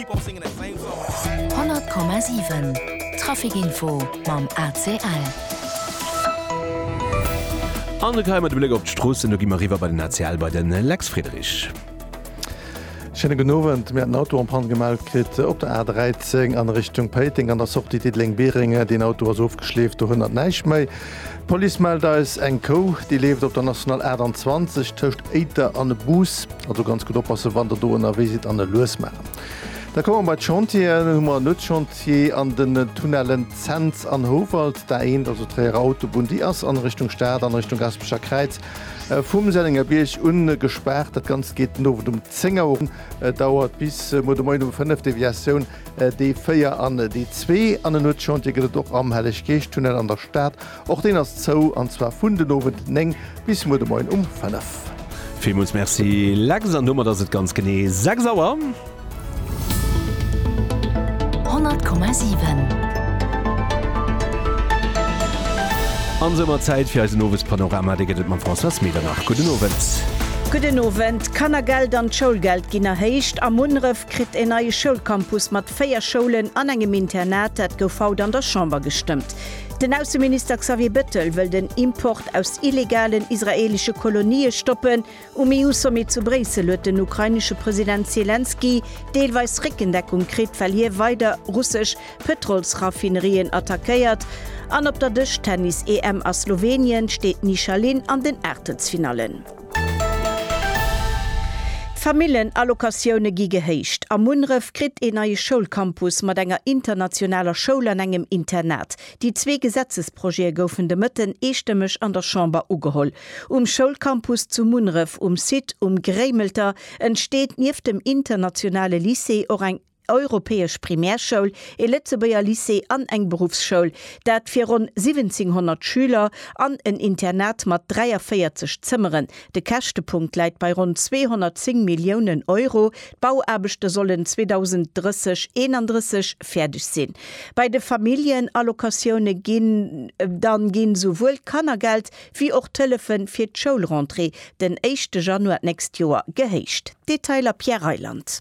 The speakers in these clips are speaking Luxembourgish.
100,7 Trafikinfo mam ACL. An de Kaymer de Bléck op d'Stroossen. Do gi mer eriwwer bei den ACL bei de Lex Friedrich. Schéine gudden Owend. Mir hat en Auto en Panne gemellt kritt op der A13 an Richtung Péiteng an der Sortie Diddeleng-Biereng. Deen Auto ass ofgeschleeft, dohannert näischt méi. D'Police mellt eis eng Kou, déi leeft op der National 28 tëscht Éiter an Bus. Also ganz gutt oppassen, wann Der do ënnerwee sidd an e lues maachen. Da komme mer bei d'Chantieren. Hu mer en Nuetschantier an den Tunnellen Zens an Houwald. Där eent, also d'Tréierer Autobunn, déi ass an Richtung Stad, an Richtung Gaspecher Kräiz, vum Sennengerbierg un gespaart. Dat Ganzt geet den Owend um 10 Auer un, dauert bis muer de Moien um 5, Deviatioun D4 an D2. An en Nuetschantier gëtt et och am Helleg-Geescht-Tunnel an der Stad. Och deen ass zou, an zwar vun den Owend 9 bis muer de Moien um 5. Villmools Merci Lex, an domat ass et ganz genee 6 Auer. 100,7. An soumat Zäit fir eisen Owespanorama. Dee gëtt et mam Françoise Medernach. Gudden Owend. Gudden Owend. D'Kannergeld an d'Schoulgeld ginn erhéicht. A Munneref kritt en neie Schoulcampus mat 4 Schoulen an engem Internat. Dat gouf haut an der Chamber gestëmmt. Den Ausseminister Xavier Bettel wëll den Import aus illegalen israeelesche Kolonië stoppen. Um EU-Sommet zu Bréissel huet den ukrainesche President Selenskyj deelweis Réckendeckung kritt, well hie weider russesch Pëtrolsraffinerien attackéiert. An op der Dëschtennis-EM a Slowenien steet d'Nisha Lin an den Aachtelsfinallen. D'Famillenallocatioune gi gehéicht. A Munneref kritt een neie Schoulcampus mat enger internationaler Schoul an engem Internat. Déi zwee Gesetzesprojete goufen de Mëtten eestëmmeg an der Chamber ugeholl. Um Schoulcampus zu Munneref um Site Um Gréimelter entsteet nieft dem internationale Lycée och eng. europäesch Primärschoul, e Lëtzebuerger Lycée an eng Beruffsschoul, dat fir ronn 1700 Schüler, an en Internat mat 43 Zëmmeren. De Käschtepunkt läit bei ronn 210 Milliounen Euro. D'Bauaarbechte sollen 2030 31 fäerdeg sinn. Bei de Familljenallocatioune ginn dann ginn souwuel d'Kannergeld wéi och d'Hëllefe fir d'Schoulrentrée den éischte Januar d'nächst Joer gehéicht. Detailer Pierre Reyland.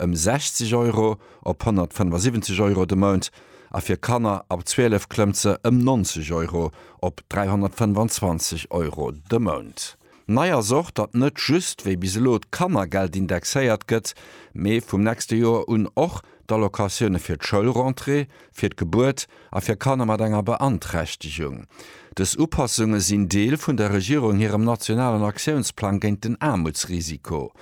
ëm 60 Euro op 175 Euro de Mount a fir Kanner ab 12 klëmmt se ëm 90 Euro op 325 Euro de Mount. Nei ass och, datt net just wéi bis elo d'Kannergeld indexéiert gëtt, mee vum nächste Joer un och d'Allocatioune fir d'Schoulrentrée, fir d'Gebuert a fir Kanner mat enger Beanträchtegung. Dës Upassunge sinn Deel vun der Regierung hirem nationalen Aktiounsplang géint den Aarmutsrisiko.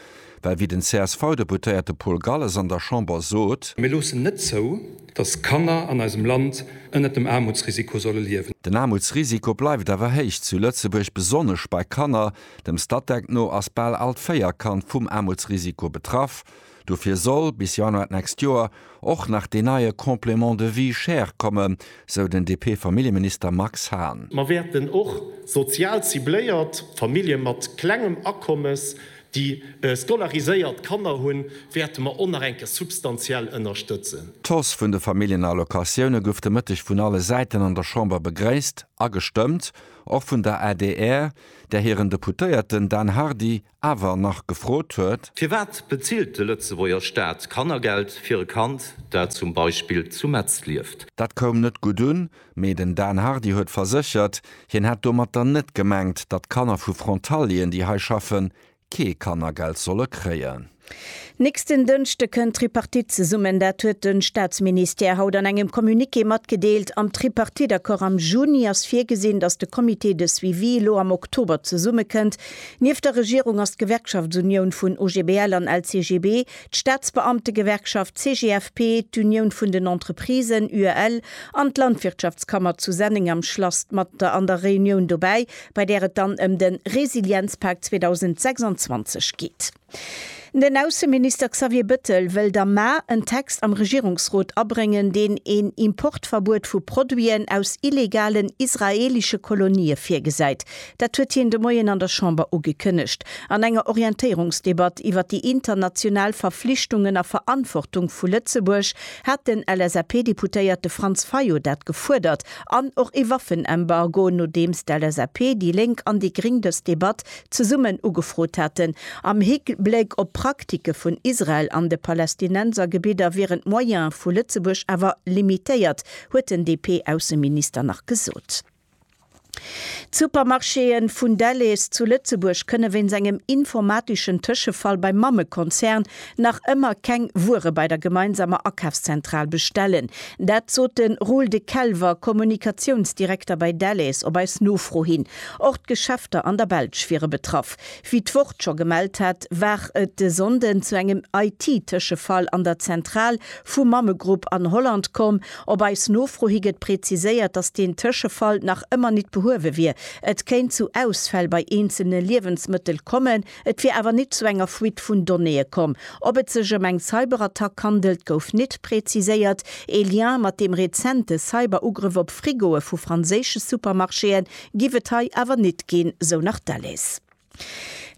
Well wéi den CSV-Deputéierte Paul Galles an der Chamber sot. Mir loossen net zou, datt Kanner an eisem Land ënnert dem Aarmutsrisiko solle liewen. Den Aarmutsrisiko bleift awer héich zu Lëtzebuerg, besonnesch bei Kanner. Dem Statec no ass bal all d'véier Kand vum Aarmutsrisiko betraff. Dofir soll bis Januar d'nächst Joer och nach deen neie Complément de vie chère kommen, sou den DP-Familljeminister Max Hahn. Mer wäerten och sozial cibléiert Famillje mat klengem Akommes, déi scolariséiert Kanner hunn, wäerte mer och nach eng Kéier substantiell ënnerstëtzen. D'Hausse vun de Familljenallocatioune gouf de Mëtteg vun alle Säiten an der Chamber begréisst a gestëmmt, och vun der adr, där hiren Deputéierten Dan Hardy awer nach gefrot huet. Firwat bezilt de Lëtzebuerger Staat Kannergeld fir e Kand, dat zum Beispill zu Metz lieft? Dat koum net gutt un, mee den Dan Hardy huet verséchert, hien hätt domatter net gemengt, datt Kanner vu Frontalieren, déi hei schaffen, kee Kannergeld solle kréien. Nächsten Dënschde kënnt d'Tripartite zesummen. Dat huet de Staatsministère haut an engem Communiqué matgedeelt. Am Tripartite-Accord am Juni ass virgesinn, datt de Comité de suivi elo am Oktober zesummekënnt, Nieft der Regierung ass d'Gewerkschaftsunioun vun OGBL an LCGB, d'Staatsbeamtegewerkschaft CGFP, d'Unioun vun den Entreprisen, UEL, an d'Landwirtschaftskammer zu Senneng am Schlass mat der an der Reunioun dobäi, bei där et dann ëm de Resilienzpak 2026 geet. Den Ausseminister Xavier Bëttel wëllt am Mä en Text am Regierungsrot abréngen, deen een Importverbuet vu Produiten aus illegalen israeelesche Kolonië virgesäit. Dat huet hien de Moien an der Chamber ugekënnegt, an enger Orientéierungsdebatt iwwer déi international Verflichtungen a Verantwortung vu Lëtzebuerg hat den LSAP-Deputéierte Franz Fayot dat gefuerdert, an och ee Waffenembargo, nodeems d'LSAP, déi Lénk an déi Gring dës Debatt zesummen ugefrot haten, am Hikbléck op d'Praktike vun Israel an de Palästinensergebidder wieren d'Moyene vu Lëtzebuerg awer limitéiert, huet den DP-Ausseminister nach gesot. D'Supermarchéen vun Delhaize zu Lëtzebuerg kënne wéinst engem informateschen Tëschefall beim Mammekonzern nach ëmmer keng Wuere bei der gemeinsamer Akafszentral bestellen. Dat sot de Roel de Kelwer, Kommunikatiounsdirekter bei Delhaize op eis Nofro hin. Och d'Geschäfter an der Belsch wiere betraff. Wéi d'Wort scho gemellt hat, war et de Sonnden zu engem IT-Tëschefall an der Zentral vum Mammegrupp an Holland komm. Op eis Nofro hi gëtt präziséiert, dass deen Tëschefall nach ëmmer nit behuewe wier. Et kéint zu Ausfäll bei eenzelne Liewensmëttel kommen. Et wier awer nit zu enger Fuite vun Donnéeë komm. Ob et sech ëm eng Cyberattack handelt, gouf nit preziséiert. Ee Lien mat deem rezente Cyber-Ugrëff op Frigoe vu franséische Supermarchéen giff et hei awer nit ginn, sou nach d'Alice.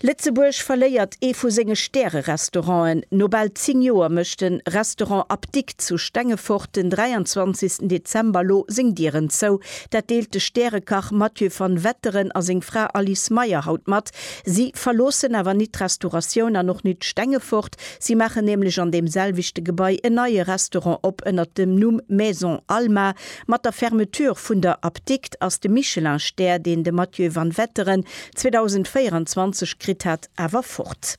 Lëtzebuerg verléiert ee vu senge Stäre-Restauranten. No bal 10 Joer mécht de Restaurant Apdikt zu Stengefort den 23 Dezember elo seng Dieren zou. Dat deelt de Stärekach Mathieu van Wetteren a seng Fra Alice Meyer haut mat. Si verloossen awer nit d'Restauratioun an och nit Stengefort. Si maachen nämlech an deem selwechte Gebai en neie Restaurant op ënnert dem Numm Maison Alma. Mat der Fermeture vun der Apdikt ass de Michelin-Stär, deen de Mathieu Vanwetteren 2024 kritt hat, awer fort.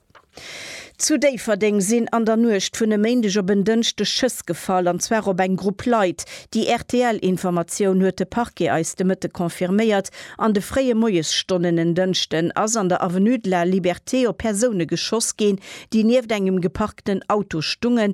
Zu Déifferdeng sinn an der Nuecht vun e Méindeg op en Dënschdeg Schëss gefall, an zwar op eng Grupp Leit. Déi RTL-Informatioun huet de Parquet eis de Mëtte confirméiert. An de fréie Moiesstonnen en Dënschden ass an der Avenue de la Liberté op Persoune geschoss ginn, déi nieft engem geparkten Auto stungen,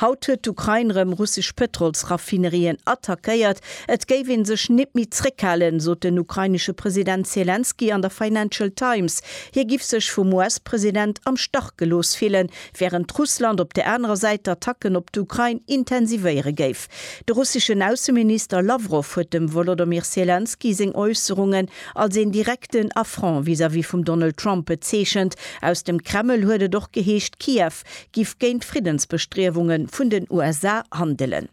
Haut huet d'Ukrain rëm russesch Pëtrolsraffinerien attackéiert. Et géif ee sech nit méi zréckhalen, sot den ukrainesche President Selenskyj an der Financial Times. Hie giff sech vum US-President am Stach gelooss fillen, wärend Russland op der anerer Säit d'Attacken op d'Ukrain intensivéiere géif. De russeschen Ausseminister Lawrow huet dem Wolodomyr Selenskyj seng Äusserungen als een direkten Affront vis-à-vis vum Donald Trump bezeechent. Aus dem Kreml huet et och geheescht, Kiew Trump giff géint d'Friddensbestriewungen vun den USA handelen.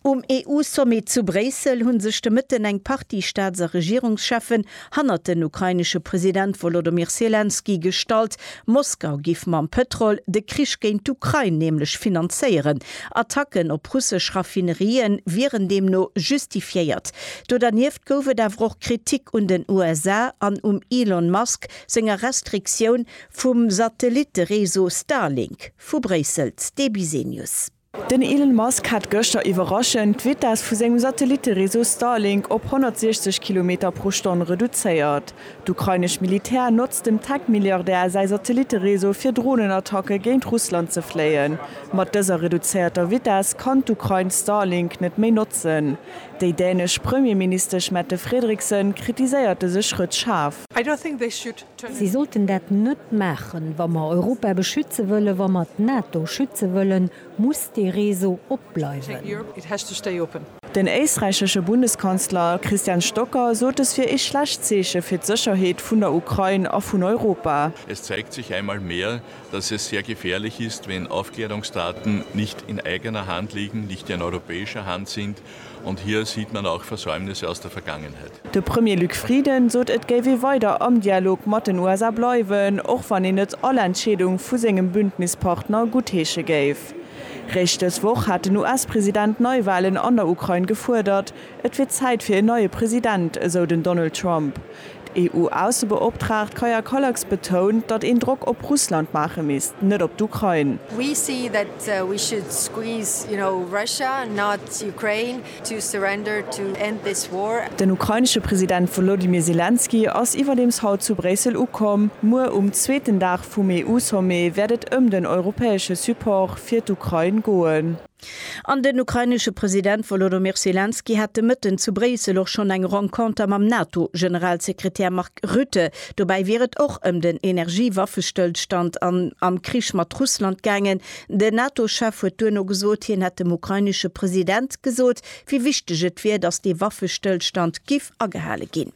Um EU-Sommet zu Bréissel hunn sech de Mëtten eng Partie Staats a Regierungscheffen hannert den ukrainesche President Wolodymyr Selenskyj gestallt. Moskau giff mam Pëtrol de Krich géint d'Ukrain nämlech finanzéieren. Attacken op russesch Raffinerien wieren deemno justifiéiert. Do dernieft gouf et awer och Kritik un den USA an um Elon Musk senger Restriktioun Vum Satellitte-Réseau Starlink vu Bréissel, d'Debbie Senius. Den Elon Musk hat gëschter iwwerraschend d'Vitess vu sengem Satellitte-Réseau Starlink op 160 Kilometer pro Stonn reduzéiert. D'ukrainesch Militär notzt dem Tech-Milliardär säi Satellitte-Réseau fir Dronenattacke géint Russland ze fléien. Mat dëser reduzéierter Vitess kann d'Ukrain Starlink net méi notzen. Déi dänesch Premierministesch Mette Frederiksen kritiséiert dëse Schrëtt schaarf. Si sollten dat net maachen. Wa mer Europa beschütze wëllen, wa mer d'NATO schütze wëllen, muss dee Réseau op bleiwen. Den éisträichesche Bundeskanzler Christian Stocker sot et wier ee schlecht Zeeche fir d'Sécherheet vun der Ukrain a vun Europa. Es zeigt sich einmal mehr, dass es sehr gefährlich ist, wenn Aufklärungsdaten nicht in eigener Hand liegen, nicht in europäischer Hand sind, Und hier sieht man auch Versäumnisse aus der Vergangenheit. De Premier Luc Frieden sot et géif ee weider am Dialog mat den USA bleiwen, och wann een net all Entscheedung vu sengem Bündnispartner guttheesche géif. Réischt dës Woch hat den US-President Neiwalen an der Ukrain gefuerdert. Et wier Zäit fir en neie President, esou den Donald Trump. D'EU-Aussebeoptraagt Kaja Kallas betount, datt een Drock op Russland maache misst, net op d'Ukrain. We see that we should squeeze, you know, Russia, not Ukraine, to surrender to end this war. Den ukrainesche President Wolodymyr Zelensky ass iwwerdeems haut zu Bréissel ukomm. Muer um zweeten Dag vum EU-Sommet wäert et ëm den europäesche Support fir d'Ukrain goen. An den ukrainesche President Wolodomyr Selenskyj hat de Mëtten zu Bréissel och schonn eng Renconter mam NATO-Generalsekretär Mark Rutte. Dobäi wier et och ëm den Energie-Waffestëllstand an am Krich mat Russland gaangen. Den NATO-Chef huet duerno gesot, hien hätt dem ukrainesche President gesot, wéi wichteg et wier, datt dee Waffestëllstand giff agehale ginn.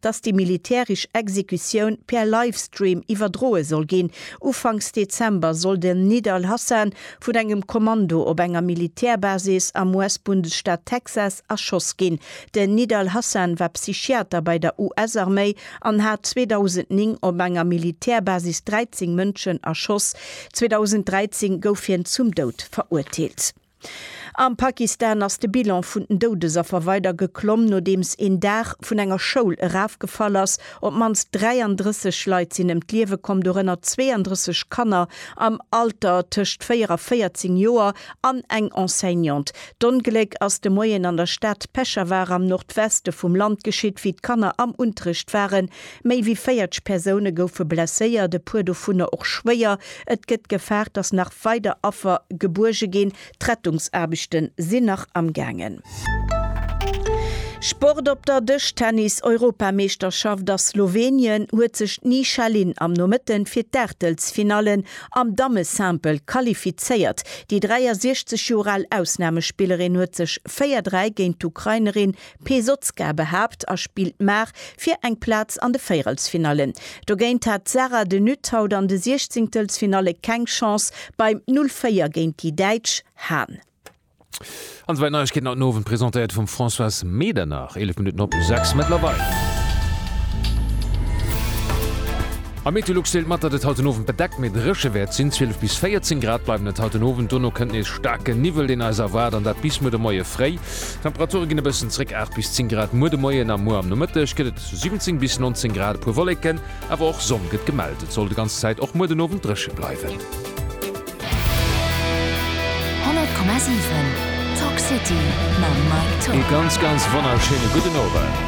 dass déi militärisch Exekutioun per Livestream iwwerdroe soll ginn. Ufanks Dezember soll den Nidal Hasan vun engem Kommando op enger Militärbasis am US-Bundesstaat Texas erschoss ginn. Den Nidal Hasan war Psychiater bei der US-Arméi an hat 2009 op enger Militärbasis 13 Mënschen erschoss. 2013 gouf hien zum Doud verurteelt. Am Pakistan ass de Bilan vun den Doudesaffer weider geklomm, nodeems een Daach vun enger Schoul erafgefall ass. Op d'mannst 33 Leit sinn ëm d'Liewe komm, dorënner 32 Kanner am Alter tëscht 4 a 14 Joer an eng Enseignante. D'Ongléck ass de Moien an der Stad Peshawar am Nordweste vum Land geschitt, wéi d'Kanner am Unterrecht waren. Méi wéi 40 Persoune goufe blesséiert, e puer dovunner och schwéier. Et gëtt gefaart, datt nach weider Affer gebuerge ginn. D'Rettungsaarbechte sinn nach am gaangen. Sport op der Dëschtennis-Europameeschterschaft a Slowenien huet sech d'Nisha Lin am Nomëtte fir d'Aachtelsfinallen am Damme-Simple qualifizéiert. Déi 63 Joer al Ausnamespillerin huet sech 4-3 géint d'Ukrainerin Pesotzka behaapt a spillt Maach fir eng Plaz an de Véierelsfinallen. Dogéint hat d'Sarah de Nutte haut an de Siechzingtelsfinalle keng Chance beim 0, 4 géint déi Däitsch Hahn. An esou weit Neiegkeeten haut den Owend, presentéiert vum Françoise Medernach, 11 Minutten op 6 mëttlerweil. A Meteolux deelt mat, datt et haut den Owend bedeckt, mee dréche wäert sinn. 12 bis 14 Grad bleiwen et haut den Owend, dono kënnt nees staarke Niwwel, deen eis erwaart, an dat bis muer de Moie fréi. D'Temperature ginn e bëssen zréck, 8 bis 10 Grad muer de Moien a muer am Nomëtteg gëtt et 17 bis 19 Grad, e puer Wolleken, awer och Sonn gëtt gemellt. Et soll de ganz Zäit och muer den Owend dréche bleiwen. 100,7 Talk City mam Mike Tock. Ee ganz ganz wonnerschéine gudden Owend.